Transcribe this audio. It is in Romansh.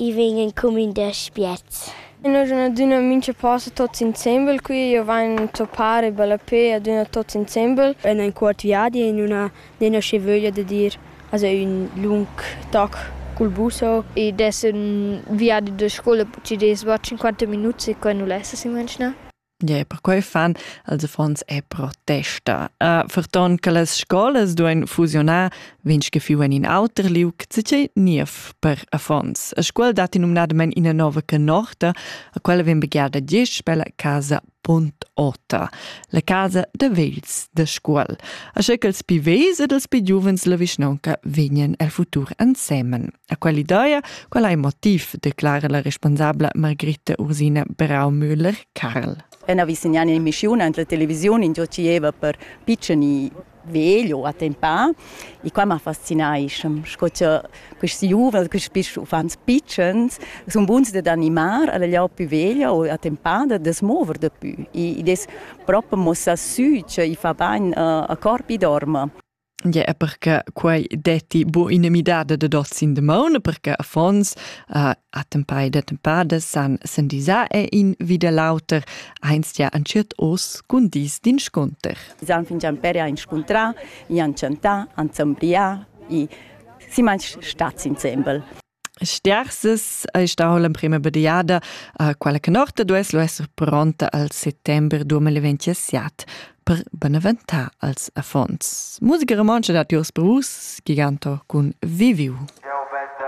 I vegn en cumin da spiez. In aduna mincha posa tots insembel qui, io vain toppar e ballapé aduna tots insembel. En un cuort viadi in una nena che vöglia da dir also ün lung toc cul buso ed es ün viadi da scoula ci des 25 minuts e quai nu lessa s'imaginar. Yeah, perquei fan els affons e protesta. Uh, ferton che las scolas duein fusionar, vince che fiu en in auter liug, zice niev per affons. A scuola dat numnadament ina nova canorta, a quella vien begiada diesch per la casa Bund Ota, la casa de vegls de scuol. A che els pi vegls ed els pi giuvens la vischnonca vegnan el futur ensemen. A quell'ideia, qual ei motiv, declara la responsabla Margritta Ursina Braumüller-Karl. En avvicinant in missiun entre televisiun in gioceva per piccini vegl o a tempà e qua m'ha fascinai sco che questi giuvel, questi uffants pitschens sono buns da animar alla lia più veglia o a tempà da smover da più e des proprio mossa su che i fa bain a corpi dorma Ja, perché quei detti bu ina midada dad oz in damaun, perché affons uh, attempai da tempada san sendisar e in vida l'auter, einst ja anciet os cun dis d'inscunter. San fingian per ja inscuntrar, ja chantar, anzembriar e si manch stat insembel. Stiarsas ei stau l'emprema bediada, uh, quella che Norte duess lu esser pronta al settember 2027 per beneventar als affons. Musica romontscha dat Jurs Brus, giganto cun Viviu.